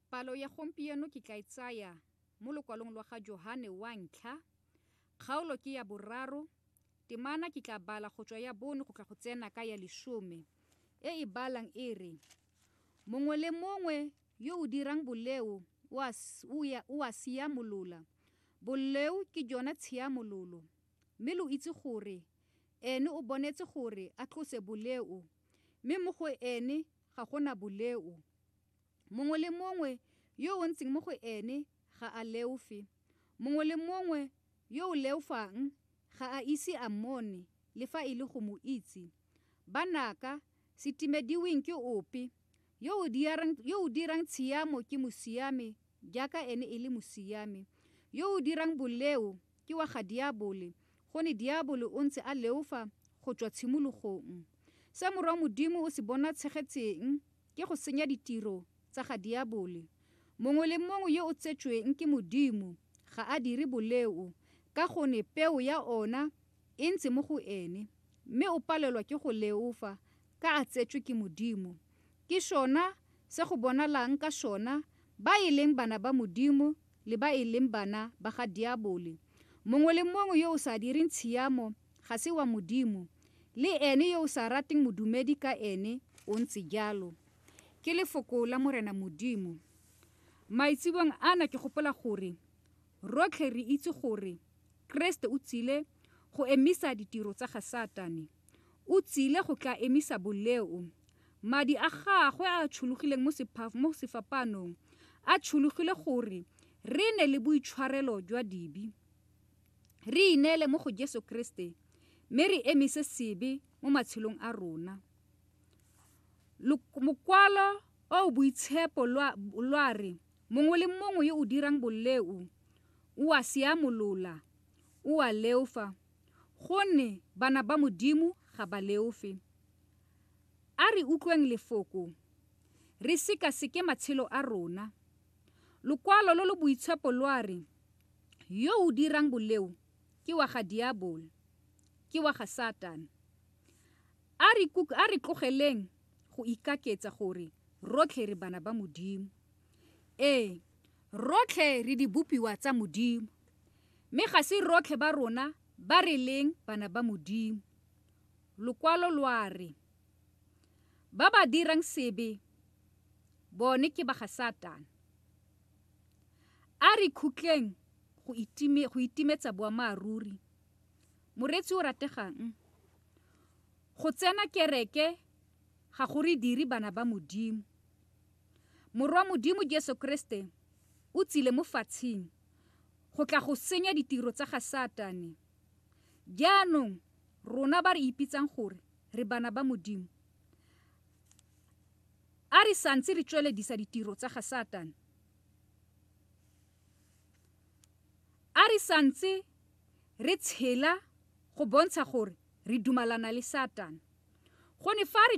Palo ya gompieno ke tla e tsaya mo lokwalong lwa ga Johane wa ntlha, kgaolo ke ya boraro, temana ke tla bala go tswa ya bone go tla go tsena ka ya lesome, e e balang e re, Mongwe le mongwe yo o dirang boleo o a, o ya, o a siamolola, boleo ke jona tshiamololo, mme lo itse gore Ene o bonetse gore a tlose boleo, mme mo go Ene Ga go na boleo. Mongwe le mongwe yo o ntseng mo go ene ga a leofe. Mongwe le mongwe yo o leofang ga a ise a mmone le fa e le go mo itse. Banaka, se timediweng ke ope, yo o dirang, yo o dirang tshiamo ke mosiame jaaka ene e le mosiame. Yo o dirang boleo ke wa ga diabole, Go ne Diabolo o ntse a leofa go tswa tshimologong. Se Morwa Modimo o se bonatshegetseng ke go senya ditiro tsa ga Diabole. Mongwe le mongwe yo o tsetsweng ke Modimo ga a dire boleo ka gone peo ya ona e ntse mo go ene, mme o palelwa ke go leofa ka a tsetswe ke Modimo. Ke sona se go bonalang ka sona ba e leng bana ba Modimo le ba e leng bana ba ga diabole. Mongwe le mongwe yo o sa direng tshiamo ga se wa Modimo, le ene yo o sa rateng modumedi ka ene o ntse jalo. Ke lefoko la Morena Modimo. Maitsebong ana ke gopola gore rotlhe re itse gore Keresete o tsile go emisa ditiro tsa ga Satane. O tsile go tla emisa boleo. Madi a gagwe a a tshologileng mo sefapaanong a tshologile gore re nne le boitshwarelo jwa dibe, re ineele mo go Jesu Keresete mme re emise sebe mo matshelong a rona. Mokwalo o o boitshepo lwa re, Mongwe le mongwe yo o dirang boleo o a seamolola, o a leofa. Gonne bana ba Modimo ga ba leofe. A re utlweng Lefoko, re sekaseke matshelo a rona. Lokwalo lo lo boitshepo lwa re, Yo o dirang boleo ke wa ga diabolo, ke wa ga Satane. A re tlogeleng go ikaketsa gore rotlhe re bana ba Modimo. Ee, rotlhe re dibopiwa tsa Modimo, mme ga se rotlhe ba rona ba re leng bana ba Modimo. Lokwalo lwa re, ba ba dirang sebe bone ke ba ga Satane. A re khutleng go itimetsa boammaaruri. Moreetsi o rategang, go tsena kereke ga go re dire bana ba Modimo. Morwa Modimo Jesu Kriste o tsile mo fatshing go tla go senya ditiro tsa ga Satane. Jaanong rona ba re ipitsang gore re bana ba Modimo, a re santse re tsweledisa ditiro tsa ga Satane. A re santse re tshela go bontsha gore re dumalana le Satane. Gone fa re